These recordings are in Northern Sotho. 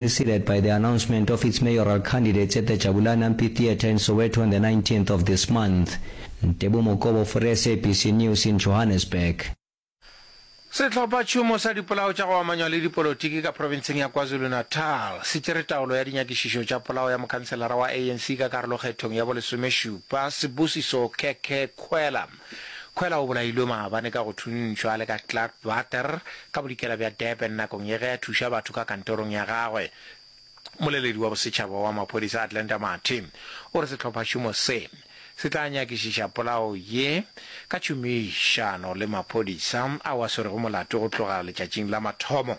preceded by the announcement of its mayoral candidates at the Jabulani Amphitheatre in Soweto on the nineteenth of this month. Ntebo Mokobo for SABC News in Johannesburg. Sehlophatšhomo sa dipolao tša go amanywa le dipolotiki ka profenseng ya KwaZulu-Natal se tšere taolo ya dinyakišišo tša polao ya mokhanselara wa ANC ka karolokgethong ya bolesomešupa, Sibusiso Khekhekhuela. Khwela o bolailwe maabane ka go thuntšhwa a le ka Clark Water ka bodikela bja Durban nakong ye ge a thuša batho ka kantorong ya gagwe. Mmoleledi wa bosetšhaba wa maphodisa Atlanta Mathe o re sehlophašomo se, se tla nyakišiša polao ye ka tšhomišano le maphodisa ao a swerego molato go tloga letšatšing la mathomo.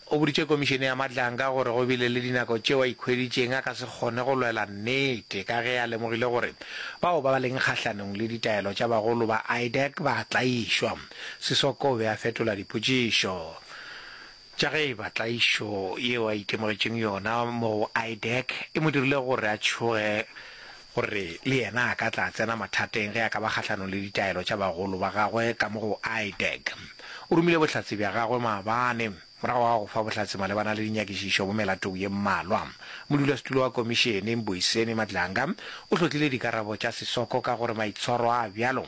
O boditše Komišene ya Madlanka gore go bile le dinako tšeo a ikhweditšeng a ka se kgone go lwela nnete ka ge a lemogile gore bao ba ba leng kgahlanong le ditaelo tša bagolo ba IDAC ba a tlaišwa. Sisoko o be a fetola dipotšišo tša ge e ba tlaišo yeo a itemogetšeng yona moo IDAC e mo dirile gore a tšhoge gore le yena a ka tla tsena mathateng ge a ka ba kgahlanong le ditaelo tša bagolo ba gagwe ka mo go IDEC. O romile bohlatse bja gagwe maabane morago ga go fa bohlatse malebana le dinyakišišo mo melatong ye mmalwa. Modulasetulo wa Komišene, Mbuyiseni Madlanga, o hlotlile dikarabo tša Sisoko ka gore maitshwaro a a bjalo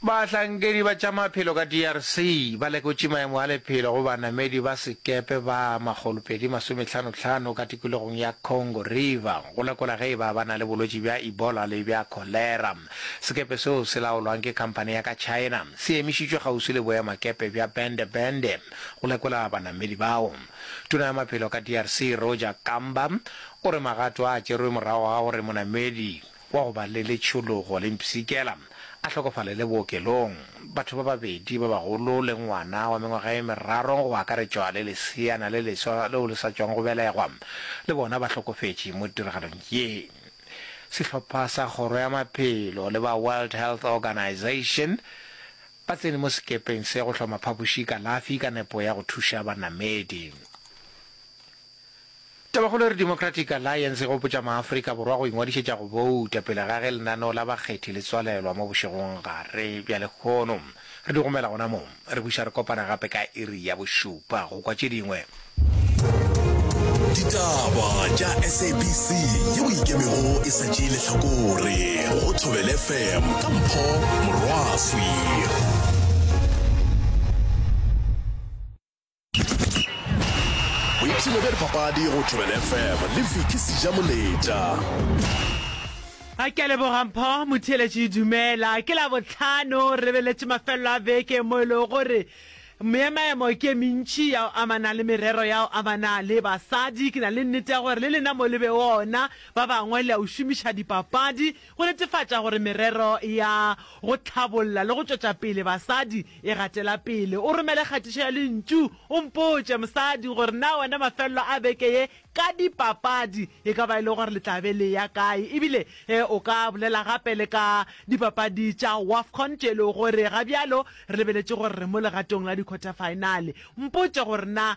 Bahlankedi ba tša maphelo ka DRC ba lekotše maemo a lephelo go banamedi ba sekepe ba makgolo pedi masomethano tlhano ka tikologong ya Congo River go lekola ge e ba ba na le bolwetši bja Ebola le bja Kholera. Sekepe seo se laolwang ke khamphane ya ka China se emišitšwe kgauswi le boemakepe bja Bende Bende go lekola banamedi bao. Tona ya maphelo ka DRC Roger Kamba o re magato a tšerwe morago ga gore monamedi wa go ba le letšhologo le mpshikela a hlokofalele bookelong. Batho ba babedi ba bagolo le ngwana wa mengwaga e meraro go akaretšwa le leseana le leswa leo le sa tšwago go belegwa le bona ba hlokofetše mo tiragalong ye. Sehlopha sa Kgoro ya Maphelo le ba World Health Organization ba tsene mo sekepeng se go hloma phapoši kalafi ka nepo ya go thuša banamedi. Tabakgolo e re Democratic Alliance e gopotša maAfrika Borwa go ingwadišetša go bouta pele ga ge lenaneo la bakgethi le tswalelwa mo bošegong gare bja lekhono. Re di gomela gona mo. Re buša re kopana gape ka iri ya bošupa go kwa tše dingwe. Ditaba tša SABC yeo e ikemego e sa tšee lehlakore go Thobel FM ka Mpho Morwaswi. boipshino bja dipapadi go thobela fm le viki seja moletša a ke lebogampho motheeletše dumela ke la botlhano re beletše mafelelo a beke mo e lego gore meemaemo ke mentši ya go amana le merero ya go amana le basadi ke na le nnete ya gore le lena mo le be ona ba bangwe le a o šomiša dipapadi go netefatša gore merero ya go hlabolla le go tšwetša pele basadi e gatela pele. O romele kgatišo ya lentšu, o mpotše, Mosadi, gore na wena mafelelo a beke ye ka dipapadi e ka ba e le gore le tla be le ya kae. Ebile ge o ka bolela gape le ka dipapadi tša Wafcon tše e lego gore ga bjalo re lebeletše gore re mo legatong la di-quarter-finale. Mpotše gore na